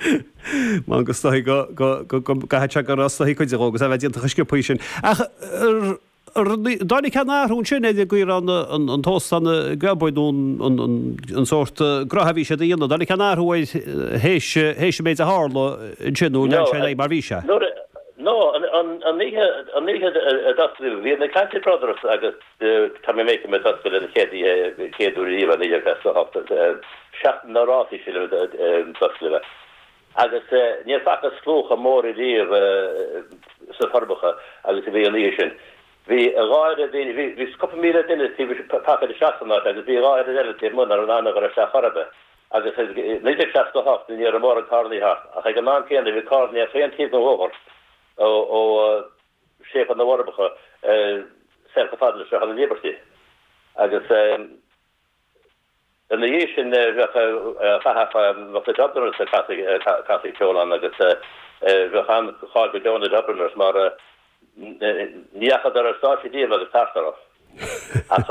M'anam go stoithfeadh go, go, go, go gcaithfidh sé gur stoitheadh cuide dhó agus é a bheith déanta chomh sciopthaí sin. Ach r, r, ní, dtáinig aon athrú ansin ar an gcaoi a raibh na, an, an t-óstán a, ag obair nó an, an, an, an sórt eh, gnotha a bhí siad a dhéanamh, dtáinig aon athrú air théis, théis an méid a tharla ansin nó lean sé ar aghaidh mar bhí sé? Nuair a, no, an, an, an oíche, an oíche a d'osclaíodh, bhí na Clancy Brothers agus. D, Tommy Makem a d'oscail é an chéad oíche naoi déag seasca a hocht seachtain na rástaí sin a d'oscail é agus ní fhaca mé slua chomh mór ariamh sna Forbacha agus a bhí an oíche sin. Bhí gar bhí bhí bhí cúpla míle duine taobh istigh pacáilte isteach san áit agus bhí dhá oiread eile taobh amuigh nach raibh in ann a ghoil isteach chor ar bith agus i 1968 ní raibh mórán carrannaí thart ach ag an am céanna bhí carrannaí ar chaon taobh den bhóthar ó ó séipéal na bhForbacha soir chomh fada leis an Liberty agus ina dhiaidh sin bheadh ag casadh ag na Dubliners ag casadh ceoil ann agus bheadh an-cháil go deo ar na Dubliners mar nach dtagaidís den stáitse díobh agus tart orthu. Ach.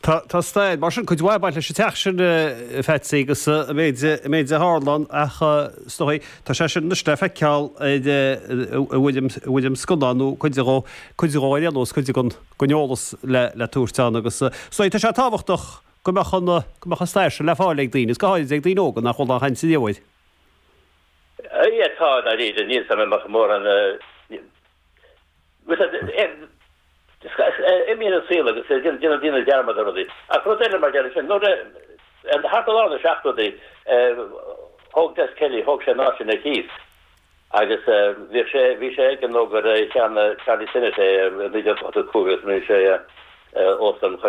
Tá, tá stair, mar sin, cuid mhaith ag baint leis an teach sin, a Pheatsaí, agus an méid, an méid a tharla ann ach is dóigh, tá sé sin anois le feiceáil ar, ar bhuel, ar bhuel an scannán, nó cuide dhó, cuide dhó ar aon nós, cuide den, den eolas le, le tabhairt ann agus is dóigh tá sé tábhachtach go mbeadh an, go mbeadh an stair sin le fáil ag daoine, agus go háirid ag daoine óga nach bhfuil aon chaint inniu air. Aye, tá, dáiríre, níl, tá mé, mórán. Agus imíonn an saol agus déanann daoine dearmad ar rudaí. Ach rud eile mar gheall ar sin, nuair a, thart ar lár na seachtóidí, thóg Des Kelly, thóg sé an áit sin ar cíos. Agus bhí sé, bhí sé aige nó gur cheannaigh Charlie Sinnott é i 1985 agus rinne sé Óstán Chois